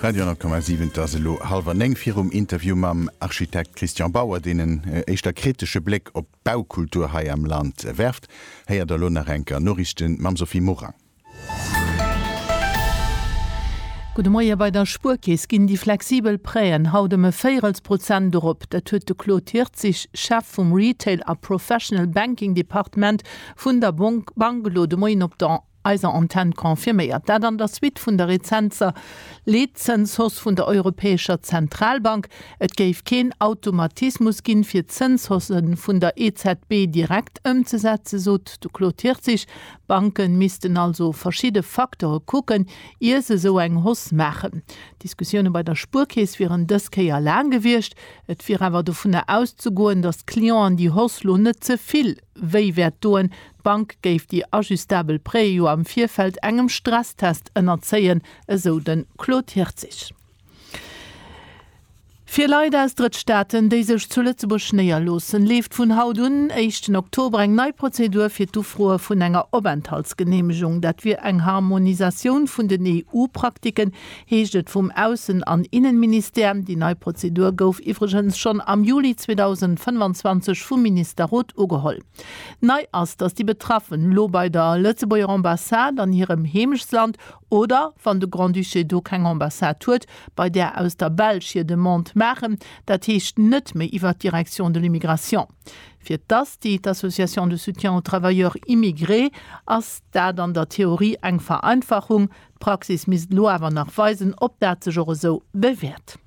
Radio 10,7 Et ass elo hallwer néng. Virum Interview mam Architekt Christian Bauer, deen en éischter kritesche Bléck op d'Baukultur hei am Land werft, héiert der elo nach eng Kéier Noriichte mam Sophie Morang. Gudde Moie, Bei der Spuerkeess ginn déi flexibel Prêt'en haut ëm e Véirelsprozent erop. Dat huet de Claude Hirtzig, Chef vum Retail a Professional Banking Departement vun der Bank elo de Moien op der eiser Antenn confirméiert. Dat an der Suite vun der rezenter Leetzënshausse vun der Europäescher Zentralbank. Et géif keen Automatismus ginn, fir d'Zënshausse vun der EZB direkt ëmzesetzen, sot de Claude Hirtzig. Banke missten also verschidde Facteure kucken, ier se esou eng Hausse maachen. D'Diskussioune bei der Spuerkeess wieren dës Kéier laang gewiescht. Et wier awer dovunner auszegoen, datt d'Clienten déi Hausse lo net ze vill. Wéi wäert doen, d'Bank géif déi ajustabel Prêtë jo am Virfeld engem Stresstest ënnerzéien, esou de Claude Hirtzig. Fir Leit aus Drëttstaaten, déi sech zu Lëtzebuerg néierloossen, leeft vun haut un, éischten Oktober, eng nei Prozedur fir d'Ufroe vun enger Openthaltsgeneemegung. Dat wier eng Harmonisatioun vun den EU-Praktiken, heescht et vum Aussen an Innenministère. Déi nei Prozedur gouf iwwregens schonn am Juli 2025 vum Ministerrot ugeholl. Nei ass, datt déi Betraffen elo bei der Lëtzebuerger Ambassade an hirem Heemechtsland oder, wann de Grand-Duché do keng Ambassade huet, bei där aus der Belsch hir Demande maachen, dat heescht net méi iwwer d'Direction de l'immigration. Fir d'ASTI, d'Association de soutien aux travailleurs immigrés, ass dat an der Theorie eng Vereinfachung. D'Praxis misst elo awer nach weisen, ob dat sech och esou bewäert.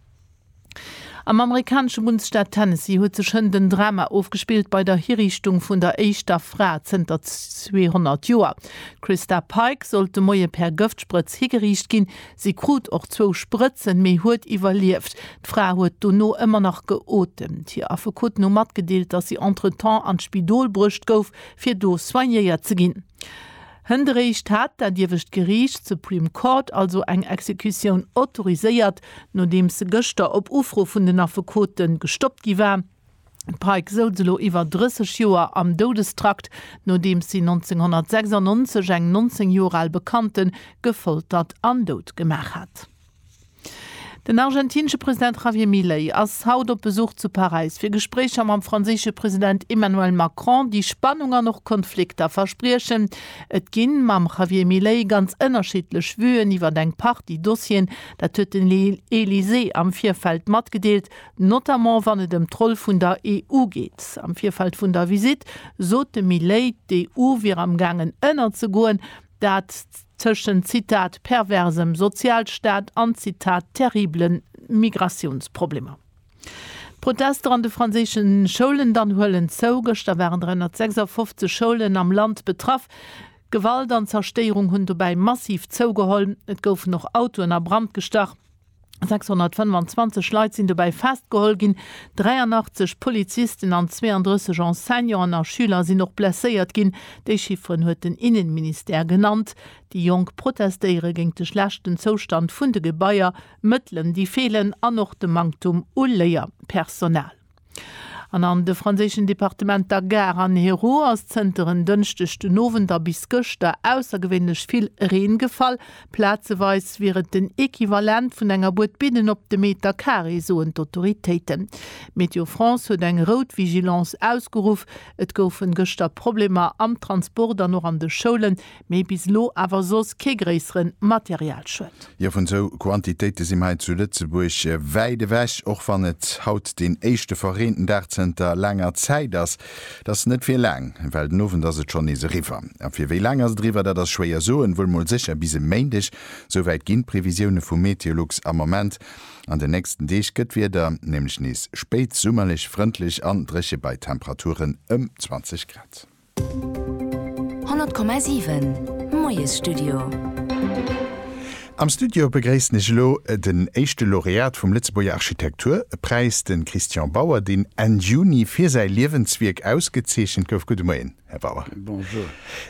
Am amerikanesche Bundesstaat Tennessee huet sech hënt en Drama ofgespillt bei der Hiriichtung vun der éischter Fra zënter 200 Joer. D'Christa Pike sollt de Moie per Gëftsprëtz higeriicht ginn. Si krut och zwou Sprëtzen, mee huet iwwerlieft. D'Fra huet dono ëmmer nach geotemt. Hir Affekoten hu matgedeelt, datt si entretemps an d'Spidol bruecht gouf, fir do soignéiert ze ginn. Hënt eréischt hat dat iewescht Geriicht, d'Supreme Court, also eng Exekutioun autoriséiert, nodeems se gëschter op Ufro vun den Affekote gestoppt gi war. D'Pike souz elo iwwer 30 Joer am Doudestrakt, nodeems si 1996 eng 19 Joer al Bekannte gefoltert an dout gemaach hat. Den argentinesche President Javier Milei ass haut op Besuch zu Paräis fir Gespréicher mam franséische President Emmanuel Macron, déi Spannung an och Konflikter verspriechen. Et ginn mam Javier Milei ganz ënnerschiddlech Vuen iwwert eng Partie Dossieren, dat huet den Elysée am Virfeld matgedeelt, notamment wann et ëm d'Roll vun der EU geet. Am Virfeld vun der Visitt sot de Milei, d'EU wier am gaangen ënnerzegoen, dat. Tëschent, Zitat, perversem Sozialstaat an, Zitat, terriblen Migratiounsproblemer. D'Protester an de franséische Schoulen dann huelen zou. Gëschter waren 356 Schoulen am Land betraff. Gewalt an Zerstéierung hunn dobäi massiv zougeholl. Et goufen och Autoen a Brand gestach. 625 Leit sinn dobäi festgeholl ginn, 83 Polizisten an 32 Enseignanten a Schüler sinn och blesséiert ginn. Déi Chifferen huet den Innenministère genannt. Déi Jonk protestéiere géint de schlechten Zoustand vun de Gebaier, Mëttelen déi feelen an och de Manktum u Léierpersonal. An an de franséischen Departementer Gard an Hérault ass zënter en Dënschdeg den Owend a bis gëschter aussergewéinlech vill Reen gefall. Plazeweis wier et den Equivalent vun enger Bued Bidden op de Meter Carré, soen d'Autoritéiten. Météo France huet eng rout Vigilance ausgeruff. Et goufe gëschter Problemer am Transport an och an de Schoulen. Mee bis elo awer soss kee gréissere Materialschued. Jo, vun esou Quantitéite si mer hei zu Lëtzebuerg wäit ewech, och wann et haut deen éischte verreenten Dag zënter laanger Zäit ass. Dat ass net fir laang, well den Owend ass et schonn nees eriwwer. A fir wéi laang ass et eriwwer, dat ass schwéier soen, wuel mol sécher bis e Méindeg. Souwäit ginn d'Previsioune vu Meteolux am Ament. An den nächsten Deeg gëtt d'Wieder nämlech nees spéit summerlech, frëndlech an dréche bei Temperaturen ëm 20 Grad. 100,7 Moiesstudio. Am Studio begréissen ech elo den éischte Laureat vum Lëtzebuerger Architektur Präis, de Christian Bauer, deen Enn Juni fir säi Liewenswierk ausgezeechent gouf. Gudde Moien, Här Bauer. Bonjour.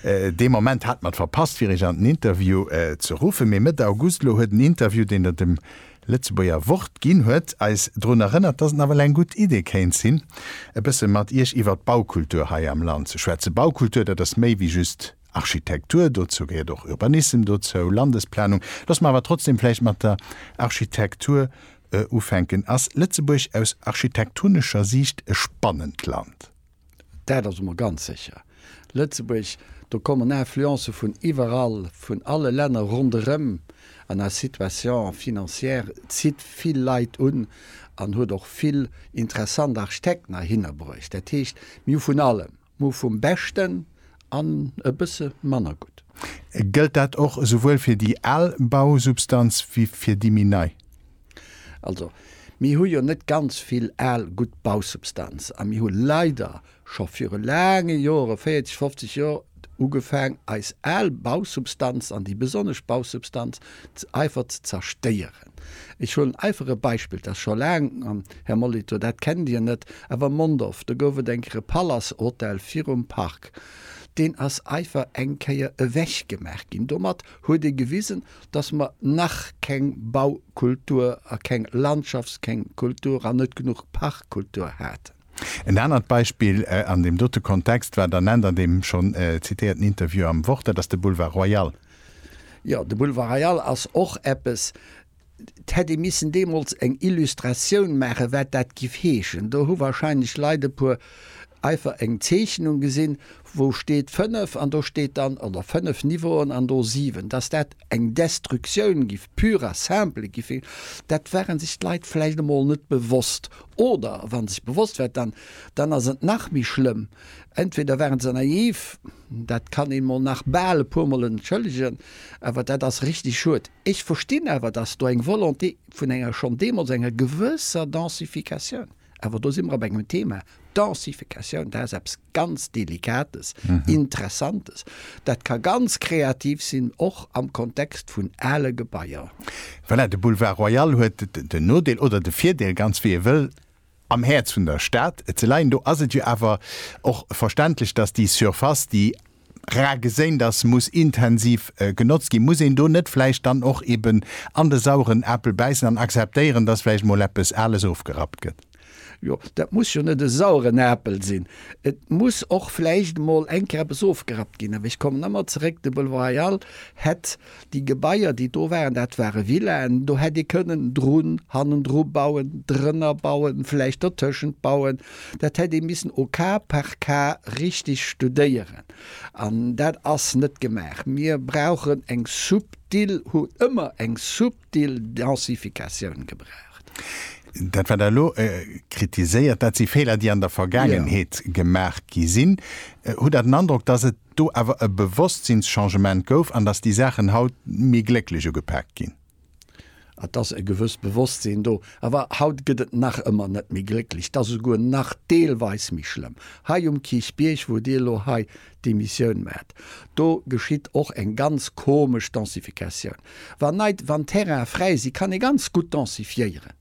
Dee Moment hat mer et verpasst fir Iech an den Interview ze ruffen, mee Mëtt August elo huet en Interview, deen Der dem Lëtzebuerger Wort ginn huet eis drun erënnert, dass et nawell eng gutt Idee kéint sinn, e bësse mat Iech iwwert d'Baukultur hei am Land ze schwätzen. Baukultur, dat ass méi wéi just Architektur, dozou gehéiert och Urbanissem dozou, Landesplanung. Loosse mer awer trotzdem vläicht mat der Architektur ufänken. Ass Lëtzebuerg aus architektonescher Siicht e spannend Land? Dat ass emol ganz sécher. Lëtzebuerg, do kommen Influencë vun iwwerall, vun alle Länner ronderëm. An eis Situation financière zitt vill Leit un an huet och vill interessant Architekt nach hinner bruecht. Dat heescht, mir hu vun allem, mir hu vum Beschten an e bësse manner gutt. Gëllt dat och esouwuel fir déi al Bausubstanz wéi fir déi méi nei? Also, mir hu jo net ganz vill al gutt Bausubstanz a mir hu leider scho viru laange Jore, 40, 50 Jor, ugefaang eis al Bausubstanz an déi besonnesch Bausubstanz einfach ze zerstéieren. Ech huelen einfach e Beispill, dat ass scho laang, Här Molitor, dat kennt Dir net, awer Mondorf, do gouf et eng Kéier e Palace-Hotel virum Park, deen ass einfach eng Kéier ewechgemaach ginn. Domat huet ee gewisen, dass mer nach keng Baukultur a keng Landschafts-, keng Kultur an net genuch Parkkultur haten. En anert Beispill an deem dote Kontext war der Nent an deem schonn zitéierten Interview am Wort, dat ass de Boulevard Royal. Jo, de Boulevard Royal ass och eppes, et hätt ee missen deemools eng Illustratioun maachen, wat dat giff heeschen. Do hu wahrscheinlech Leit e puer einfach eng Zeechnung gesinn, wou steet 5 an do steet dann, oder 5 Niveauen an do 7, dass dat eng Destructioun giff, pure et simple giff sinn, dat ware sech d'Leit vläicht emol net bewosst. Oder wa se sech bewosst waren, dann, dann ass et nach méi schlëmm, entweder ware se naiv, dat kann een emol nach bal e puermol entschëllegen, awer dat ass richtig schued. Ech verstinn awer, dass do eng Volonté vun enger, schonn deemools enger gewësser Densification, Awer do si mer op engem Thema, Densificatioun, dat ass eppes ganz Delikates, Interessantes. Dat ka ganz kreativ sinn, och am Kontext vun ale Gebaier. Voilà, de Boulevard Royal huet den Nodeel, oder de Virdeel, ganz wéi ee wëll, am Häerz vun der Stad ze leien. Do ass et jo awer och verständlech, dass déi Surface, déi rar geséint ass, muss intensiv genotzt ginn. Muss een do net vläicht dann och eben an de sauren Apel bäissen an akzeptéieren, dass vläicht mol eppes Ales ofgerappt gëtt? Jo, dat muss jo net e sauren Apel sinn. Et muss och vläicht mol eng Kéier eppes ofgerappt ginn. Awer ech kommen ëmmer zeréck, de Belval Royal hätt Déi Gebaier, déi do waren, dat ware Villaen. Do hätt ee kënnen drun, hannendru bauen, drënner bauen, vläicht dertëschent bauen. Dat hätt ee missen au cas par cas richtig studéieren. An dat ass net gemaach. Mir brauchen eng subtil, hu ëmmer eng subtil Densifikatioun gebraucht. Dat, wat Der elo kritiséiert, dat si Feeler, déi an der Vergaangenheet gemaach gi sinn. Hutt Der den Androck, dass et do awer e Bewosstsinns-Changement gouf an dass déi Saachen haut méi glécklech ugepaakt ginn. Et ass e gewësst Bewosstsinn do, awer haut gëtt et nach ëmmer net méi glécklech, et ass esouguer nach deelweis méi schlëmm. Hei um Kierchbierg, wou Dir elo hei d'Emissioun maacht, do geschitt och eng ganz komesch Densifikatioun. Wann neit, wann Terraine fräi sinn, kann ee ganz gutt densifiéieren,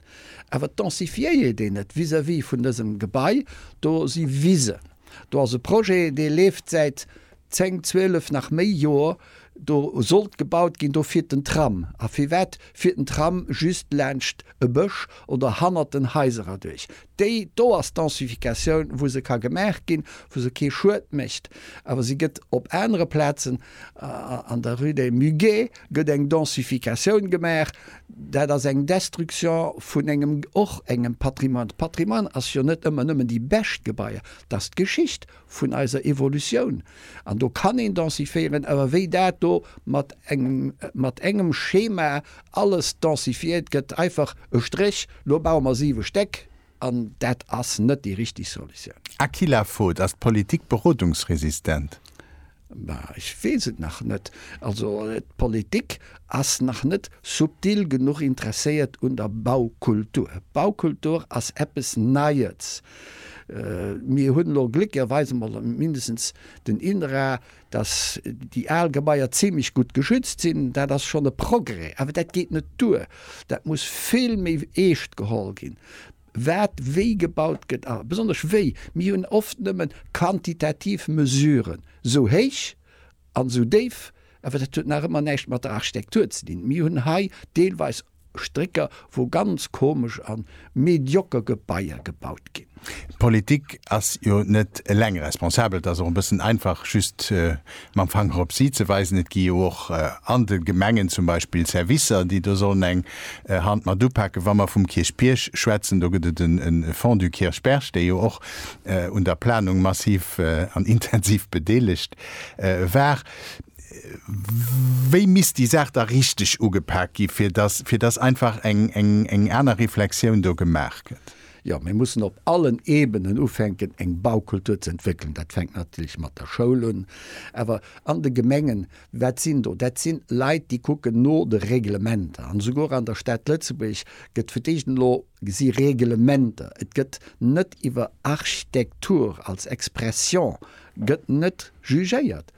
awer densifiéiert een et vis-à-vis vun dësem Gebai, do si Wisen. Do ass e Projet, dee leeft säit zéng, zwielef, nach méi Joer. Do sollt gebaut ginn, do fiert den Tram. A firwat fiert den Tram just laanscht e Bësch oder hannert den Haiser erduerch? Déi do ass d'Densificatioun, wou se ka gemaach ginn, wou se kee Schued mécht. Awer se gëtt op anere Plazen An der Rue des Muguets gëtt eng Densificatioun gemaach. Dat ass eng Destruction vun engem, och engem Patrimoine. Patrimoine ass jo net ëmmer nëmmen déi bescht Gebaier. Dat ass d'Geschicht vun eiser Evolutioun. An do kann een densifiéieren. Awer wéi dat do mat engem, mat engem Schema alles densifiéiert gëtt, einfach e Stréch, lo baue mer siwe Stéck, An dat ass net déi richtig Solutioun. Aquila Voet, Ass d'Politik berodungsresistent? Ma ech weess et nach net. Also d'Politik ass nach net subtil genuch interesséiert un der Baukultur. Baukultur ass eppes Neies. Mir hunn elo gléckerweis emol mindestens den INRA, Dass déi al Gebaier zimlech gutt geschützt sinn, dat ass schonn e Progrès. Awer dat geet net duer. Dat muss vill méi eescht geholl ginn, wat wéi gebaut gëtt a besonnesch wéi. Mir hunn oft nëmme quantitativ Mesuren, sou héich an sou déif, awer dat huet nach ëmmer näischt mat der Architektur ze dinn. Mir hunn hei deelweis Strécker, wou ganz komesch an medioker Gebaier gebaut gin. D'Politik ass jo net eleng responsabel. Et ass och e bëssen einfach just mam Fanger op si ze weisen. Et gi jo och an de Gemengen zum Beispill Servicer, déi do sollen eng Hand mat upaken. Wa mer vum Kierchbierg schwätzen, do gëtt et e Fonds du Kirchberg, dee jo och un der Planung massiv an intensiv bedeelegt war. Wéi misst déi Saach da richteg ugepak gi fir dass fir dass einfach eng eng eng aner Reflexioun do gemaach gëtt? Jo, mir mussen op allen Ebenen ufänken eng Baukultur ze entwéckelen. Dat fänkt natierlech mat der Schoul un, awer an de Gemengen, wat sinn do? Dat si Leit déi kucken no de Reglementer an esouguer an der Stad Lëtzebuerg gëtt fir d'éischt elo gesi Reglementer, et gëtt net iwwer Architektur als Expression gëtt net jugéiert.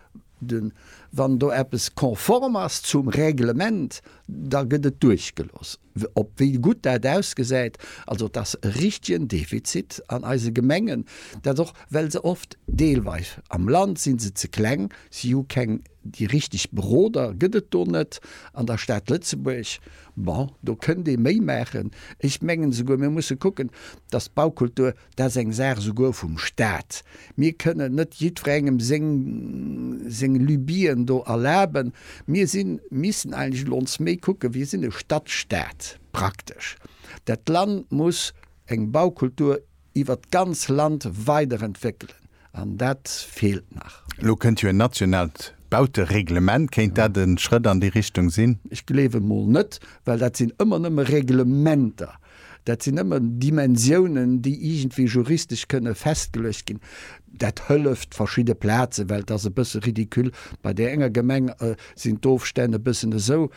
Wann do eppes konform ass zum Règlement, da gëtt et duerchgelooss, ob wéi gutt dat ausgesäit. Also et ass e richtegen Defizit an eise Gemengen, dat och well se oft deelweis am Land si se ze kleng, si hu keng, déi richteg Beroder gëtt et do net an der Stad Lëtzebuerg. Bon, do kënnt ee méi maachen. Ech mengen esouguer, mir musse kucken, dass d'Baukultur Dat ass eng Saach esouguer vum Staat. Mir kënnen net jiddwerengem seng Lubien do erlaben. Mir missen eigentlech elo ons méi kucken, wir sind e Stadtstaat praktesch. Dat Land muss eng Baukultur iwwert d'ganz Land weiderentwéckelen an dat feelt nach. Elo kënnt jo en nationaalt Bautereglement. Kéint dat e Schrëtt an déi Richtung sinn? Ech gleewen emol net, well dat sinn ëmmer nëmme Reglementer. Dat sinn ëmmer Dimensiounen, déi iergendwéi juristesch kënne festgeluecht ginn. Dat hëlleft verschidde Plazen, well et ass e bësse ridicule, bei där enger Gemeng sinn d'Ofstänn e bëssen esou,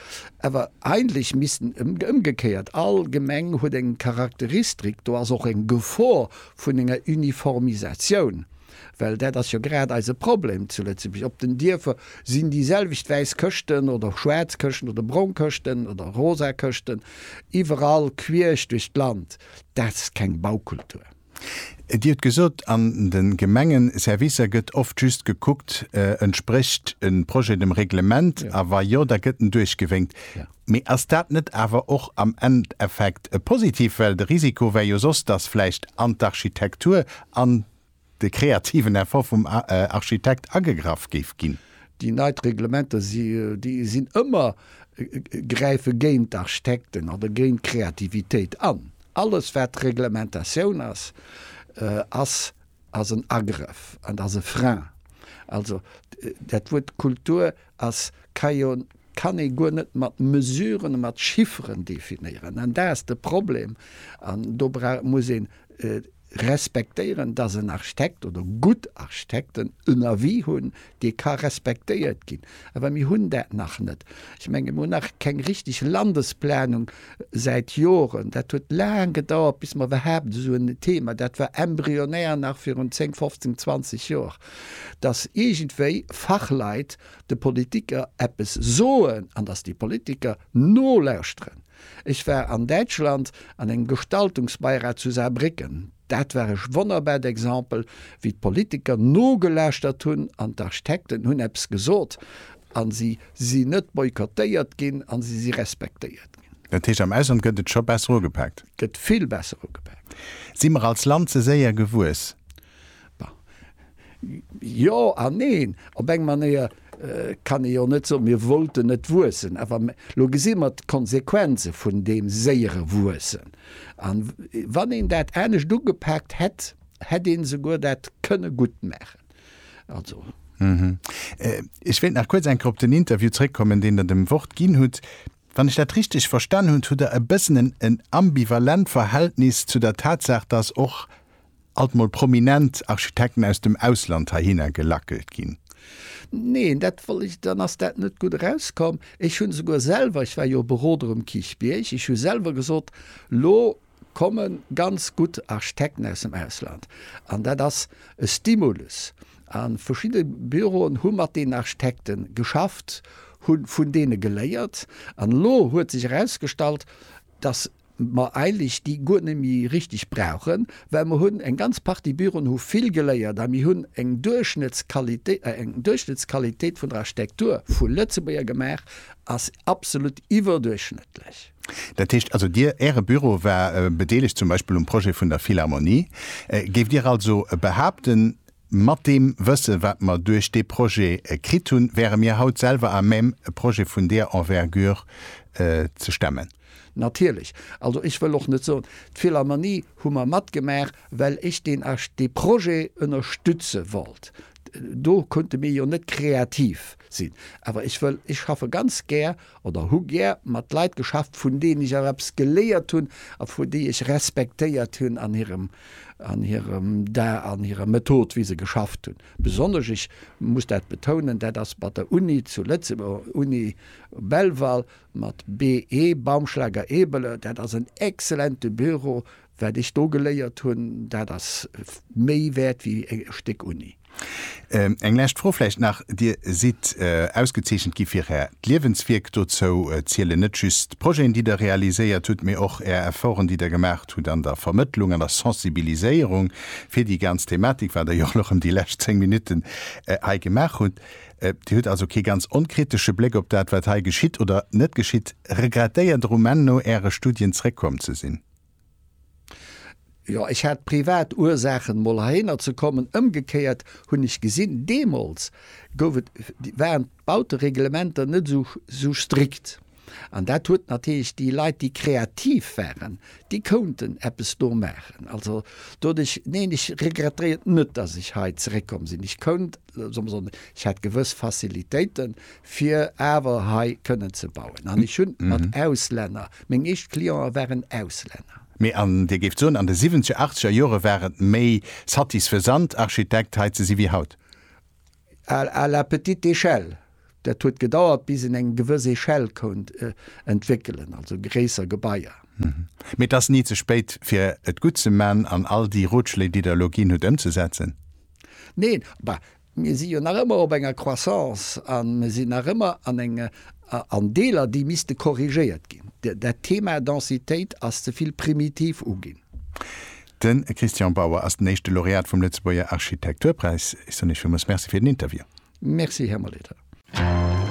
awer eigentlech missten ëmgekéiert all Gemeng huet eng Charakteristrik, do ass och eng Gefor vun enger Uniformisatioun. Well dat ass jo grad eise Problem zu Lëtzebuerg, op den Dierfer sinn déi selwecht wäiss Këschten oder schwaarz Këschten oder brong Këschten oder rosa Këschten iwwerall quierch duerch d'Land. Dat ass keng Baukultur. Dir hutt gesot, an de Gemenge Servicer gëtt oft just gekuckt, entsprécht e Projet dem Reglement a wa jo, da gëtt en duerchgewénkt. Mee ass dat net awer och am Endeffekt positiv? Well de Risiko wär jo soss, datt vläicht an d'Architektur an de kreativen Effort vum Architekt agegraff géif ginn. Déi neit Reglementer sinn ëmmer, gräife géint d'Architekten oder géint d'Kreativitéit an. Alles wat Reglementatioun ass, ass ass en Agrëff an ass e Frein. Also dat Wuert Kultur ass, ka jo, kann ee guer net mat Mesuren a mat Chifferen definéieren an dat ass de Problem an do muss een, respektéieren, dass en Architekt oder gutt Architekten en Avis hunn, dee ka respektéiert ginn. Awer mir hunn dat nach net. Ech menge mir hunn nach keng richteg Landesplanung säit Joren. Dat huet laang gedauert, bis mer iwwerhaapt esou en Thema, dat war embryonär nach virun 10, 15, 20 Joer, dass iergendwéi Fachleit de Politiker eppes soen an dass déi Politiker nolauschteren. Ech war an Däitschland an engem Gestaltungsbeirat zu Saarbrécken. Dat war ech wonnerbart Exemple, wéi d'Politiker nogelauschtert hunn an d'Architekten hunn eppes gesot a si si net boykottéiert ginn a si si respektéiert ginn. Dat heescht, am Ausland gëtt et scho besser ugepaakt? Gëtt vill besser ugepaakt. Si mer als Land ze séier gewuess? Jo an neen. Op eng Manéier kann ee jo net soen, mir wollten net wuessen, awer elo gesi mer d'Konsequenze vun deem séiere Wuessen. A wann een dat anescht ugepaakt hätt, hätt ee souguer dat kënne gutt maachen. Also. Ech wéilt nach kuerz eng Kéier op den Interview zrëckkommen, deen Der dem Wort ginn hutt. Wann ech dat richteg verstan hunn, hutt Der e bëssen en en ambivalent Verhältnis zu der Tatsaach, dass och alt mol prominent Architekten aus dem Ausland heihinner gelackelt ginn. Neen, dat wollt ech, dann ass dat net gutt erauskomm. Ech hunn esouguer selwer, ech war jo Beroder um Kichbierg, ech hu selwer gesot, elo komme ganz gutt Architekten aus dem Ausland an dat ass e Stimulus. A verschidde Büroen hu mat deenen Architekte geschafft, hu vun deene geléiert an elo huet sech erausgestallt, datt mer eigentlech déi guer net méi richteg brauchen, well mer hunn eng ganz Partie Büroen hu vill geléiert a mir hunn eng Duerchschnëttsqualitéit vun der Architektur vu Lëtzebuerger gemaach, ass absolut iwwerduerchschnëttlech. Dat heescht also, Dir, Äre Büro war bedeelegt zum Beispill um Projet vun der Philharmonie. Géift Dir also behaupten, mat deem Wësse wat mer duerch dee Projet kritt hunn, wäre mir haut selwer à même e Projet vun deer Envergure ze stemmen? Natierlech. Also ech wëll och net soen, d'Philharmonie hu mer matgemaach, well ech deen Projet ënnerstütze wollt. Do konnte mir jo net kreativ sinn. Awer ech wëll, ech schaffe ganz gär oder hu gär mat Leit geschafft, vun deenen ech och eppes geléiert hunn a vu déi ech respektéiert hunn an hirem, an hirem Da, an hirer Method, wéi se geschafft hunn. Besonnesch, ech muss dat betounen, dat ass mat der Uni zu Lëtzebuerg, Uni Belval, mat BE, Baumschlager-Ebeler, dat ass en exzellente Büro, Wat ech do geléiert hunn, dat ass méi wäert wéi e Stéck Uni. Eng lescht Fro vläicht nach, Dir sidd ausgezeechent gi fir Är d'Liewenswierk. Dozou zielen net just d'Projeten, déi Der realiséiert hutt, mee och Är Efforten, déi Der gemaacht hutt an der Vermëttlung, an der Sensibiliséierung fir déi ganz Thematik, wat Der jo och erëm déi lescht zéng Minutten hei gemaach hutt. Dir hutt also kee ganz onkritesche Bléck op dat, wat hei geschitt oder net geschitt. Regrettéiert Der um Enn no Äre Studien zréckkomm ze sinn? Jo, ech hat privat Ursaachen mol heihinner ze kommen. Ëmgekéiert hunn ech gesinn, deemools gouf et, waren d'Bautereglementer net esou strikt an dat huet natierlech déi Leit, déi kreativ waren, déi kounten eppes do maachen. Also doduerch, neen, ech regrettéiert net, dass ech hei zeréckkomm sinn. Ech kount soll mer soen, ech hätt gewëss Facilitéiten, fir awer hei kënnen ze bauen. An ech hunn mat Auslänner, meng éischt Clienten waren Auslänner. Mee an Dir géift soen, an de siwwenzeger, achtzeger Jore war et méi satisfaisant, Architekt hei ze si wéi haut? À la petite échelle, Dat huet gedauert bis een eng gewëss Echelle kount entwéckelen, also gréisser Gebaier. Mee et ass ni ze spéit fir et gutt ze man an all déi Rotschléi déi der elo ginn hutt ëmzesetzen. Neen, bah mir si jo nach ëmmer op enger Croissance a mir sinn nach ëmmer an enge an Deeler déi misste korrigéiert ginn. Dat Thema Densitéit ass ze vill primitiv uginn. De Christian Bauer ass den éischte Laureat vum Lëtzebuerger Architekturpräis. Ech soen Iech villmools Merci fir den Interview. Merci, Här Molitor.